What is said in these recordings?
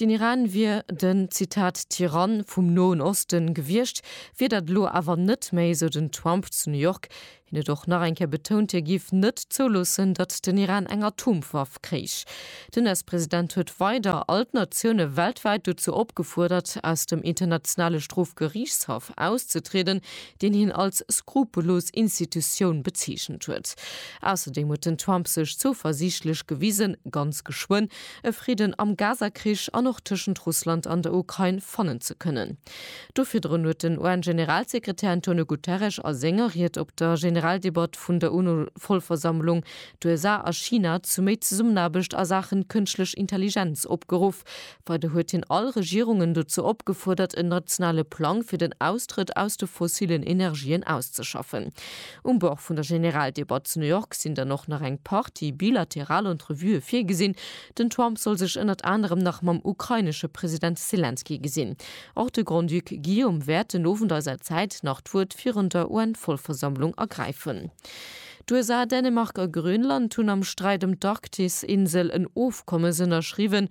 Den Iran wier den, Zitat, Tyrann vum Noen Osten gewiescht, wier dat elo awer net méi, sou den Trump zu New York. Hien huet och nach eng Kéier betount, hie géif net zouloossen, datt den Iran eng Atomwaff kréich. Den US-President huet weider all d'Natioune weltwäit dozou opgefuerdert, aus dem Internationale Strofgeriichtshaff auszetrieden, deen hien als skrupellos Institutioun bezeechent huet. Ausserdeem huet den Trump sech zouversiichtlech gewisen, ganz geschwënn e Fridden am Gaza-Krich an och tëschent Russland an der Ukrain fannen ze kënnen. Do virdrun huet den UN-Generalsekretär Antonio Guterres a senger Ried op der Generaldebatt vun der UNO-Vollversammlung d'USA a China zu méi Zesummenaarbecht a Saachen kënschtlech Intelligenz opgeruff. Weider huet hien all Regierungen dozou opgefuerdert, en nationale Plang fir den Austrëtt aus de fossillen Energien auszeschaffen. Um Bord vun der Generaldebatt zu New York sinn dann och nach eng Partie bilateral Entrevuë virgesinn. Den Trump soll sech ënnert anerem nach mam ukrainesche President Selenskyj gesinn. Och de Grand-Duc Guillaume wäert den Owend eiser Zäit nach d'Wuert virun der UN-Vollversammlung ergräifen. D'USA, Dänemark a Grönland hunn am Sträit ëm d'Arktisinsel en Ofkommes ënnerschriwwen.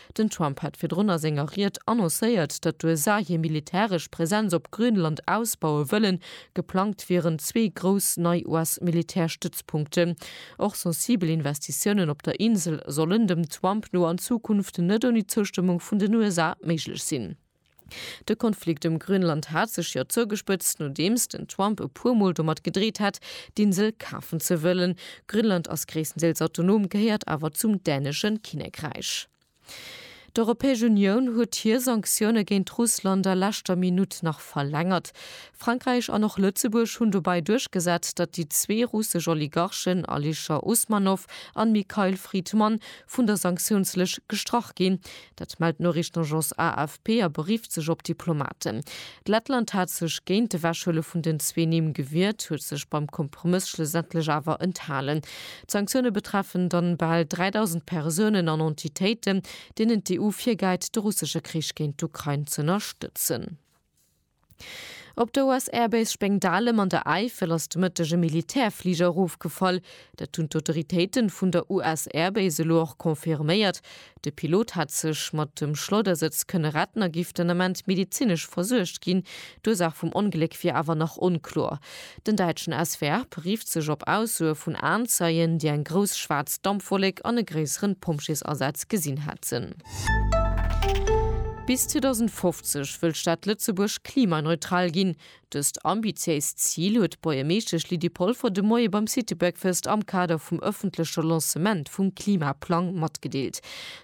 Den Trump hat virdrun a senger Ried annoncéiert, datt d'USA hir militäresch Präsenz op Grönland ausbaue wëllen. Geplangt wieren zwee grouss nei US-Militärstëtzpunkten. Och sensibel Investitiounen op der Insel sollen, dem Trump no, an Zukunft net ouni d'Zoustëmmung vun den USA méiglech sinn. De Konflikt ëm Grönland hat sech jo zougespëtzt, nodeems den Trump e puer Mol domat gedreet hat, d'Insel kafen ze wëllen. Grönland ass gréisstendeels autonom, gehéiert awer zum dänesche Kinnekräich. D'Europäesch Unioun huet hir Sanktioune géint Russland a leschter Minutt nach verlängert. Frankräich an och Lëtzebuerg hunn dobäi duerchgesat, datt déi zwee russesch Oligarchen Alisher Usmanov an Mikhail Fridman vun der Sanktiounslëscht gestrach ginn, Dat mellt d'Noriichtenagence AFP a berifft sech op Diplomaten. D'Lettland hat sech géint d'Ewechhuele vun den zwee Nimm gewiert, huet sech beim Kompromëss schlussendlech awer enthalen. D'Sanktioune betreffen dann bal 3.000 Persounen an Entitéiten, deenen d'EU virgäit, de russesche Krich géint d'Ukrain z'ënnerstëtzen. Op der US Air Base Spengdalem an der Äifel ass de Mëtteg e Militärfliger erofgefall. Dat hunn d'Autoritéiten vun der US Air Base elo och confirméiert. De Pilot hat sech mat dem Schleudersëtz kënne retten a giff den Ament medezinesch versuergt ginn. D'Ursaach vum Ongléck wier awer nach onkloer. Den däitschen SWR berifft sech op Aussoe vun Aenzeien, déi eng grouss schwaarz Dampwollek an e gréisseren Pompjeesasaz gesinn hätten. Bis 2050 wëll d'Stad Lëtzebuerg klimaneutral ginn. Dëst ambitiéist Zil huet d'Buergermeeschtesch Lydie Polfer de Moie beim Citybreakfast am Kader vum ëffentleche Lancement vum Klimaplang matgedeelt.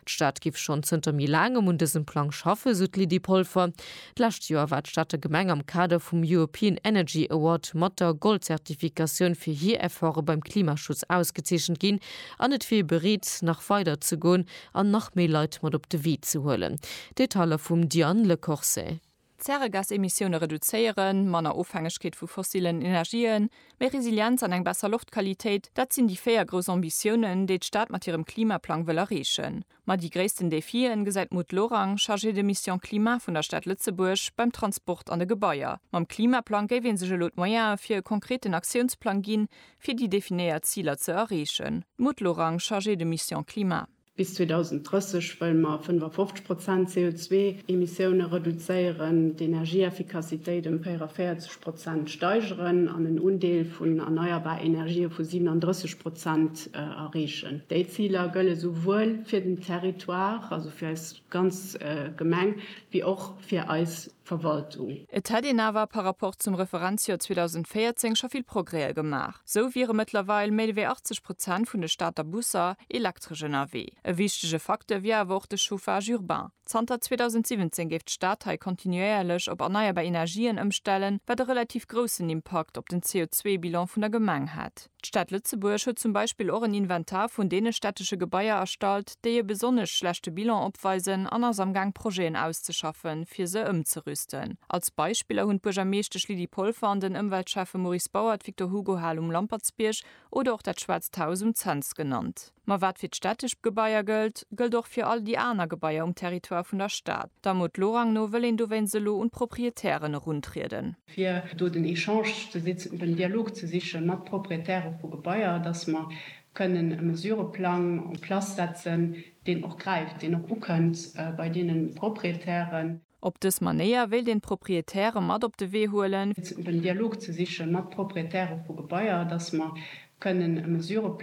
D'Stad giff schonn zënter méi laangem un dësem Plang schaffen, sou d'Lydie Polfer. D'lescht Joer war d'Stater Gemeng am Kader vum European Energy Award mat der Gold-Zertifikatioun fir hir Efforte beim Klimaschutz ausgezeechent ginn an et wier ee bereet, nach weider ze goen, an nach méi Leit mat op de Wee ze huelen. Detailer vum Diane Lecorse. Zäregasemissioune reduzéieren, manner Ofhängegkeet vu fossillen Energien, méi Resilienz an eng besser Loftqualitéit, dat sinn déi véier grouss Ambitiounen, déi d'Stad mat hirem Klimaplang wëll erreechen. Ma déi gréissten Defien, gesäit d'Maud Lorang, Chargée de mission climat vun der Stad Lëtzebuerg, beim Transport an de Gebaier. Mam Klimaplang géif ee sech elo d'Moyene fir e konkreten Aktiounsplang ginn, fir déi definéiert Ziler ze erreechen. D'Maud Lorang, Chargée de mission climat. Bis 2030 wëlle mer 55 Prozent CO2-Emissioune reduzéieren, d'Energieeffikassitéit ëm 44 Prozent steigeren an en Undeel vun erneierbar Energië vu 37 Prozent erreechen. Déi Ziler gëlle souwuel fir den Territoire, also fir eis ganz Gemeng, wéi och fir eis Verwaltung. Et hätt een awer par rapport zum Referenzjoer 2014 scho vill Progrèë gemaach. Esou wiere mëttlerweil méi wéi 80 Prozent vun de Stater Busser elektresch ënnerwee. E wichtege Facteur wier awer och de Chauffage urbain. Zanter 2017 géif d'Stad hei kontinuéierlech op erneierbar Energien ëmstellen, wat e relativ groussen Impakt op den CO2-Bilan vun der Gemeng hätt. D'Stad Lëtzebuerg huet zum Beispill och en Inventar vun deene städtesche Gebaier erstallt, déi e besonnesch schlechte Bilan opweisen an ass amgaang Projeten auszeschaffen, fir se ëmzerüsten. Als Beispiller hunn d'Buergermeeschtesch Lydie Polfer an den Ëmweltschäffe Maurice Bauer d'Victor-Hugo-Hal um Lampertsbierg oder och dat Schwaarzt Haus um Cents genannt. Ma wat fir d'städtesch Gebaier gëllt, gëllt och fir all déi aner Gebaier um Territoire vun der Stad. Der Mot Lorang no wëll een dowéinst elo un d'Proprietären eruntrieden. fir do den Echange ze sichen, den Dialog ze siche mat Proprietäre vu Gebaier, dass mer kënnen e Mesureplang en place setzen, deen och gräift, deen och ukënnt bei deene Proprietären. Op dës Manéier wéilt een d'Proprietäre mat op de Wee huelen. den Dialog ze siche mat Proprietäre vu Gebaier, dass mer kënnen e Mesureplang.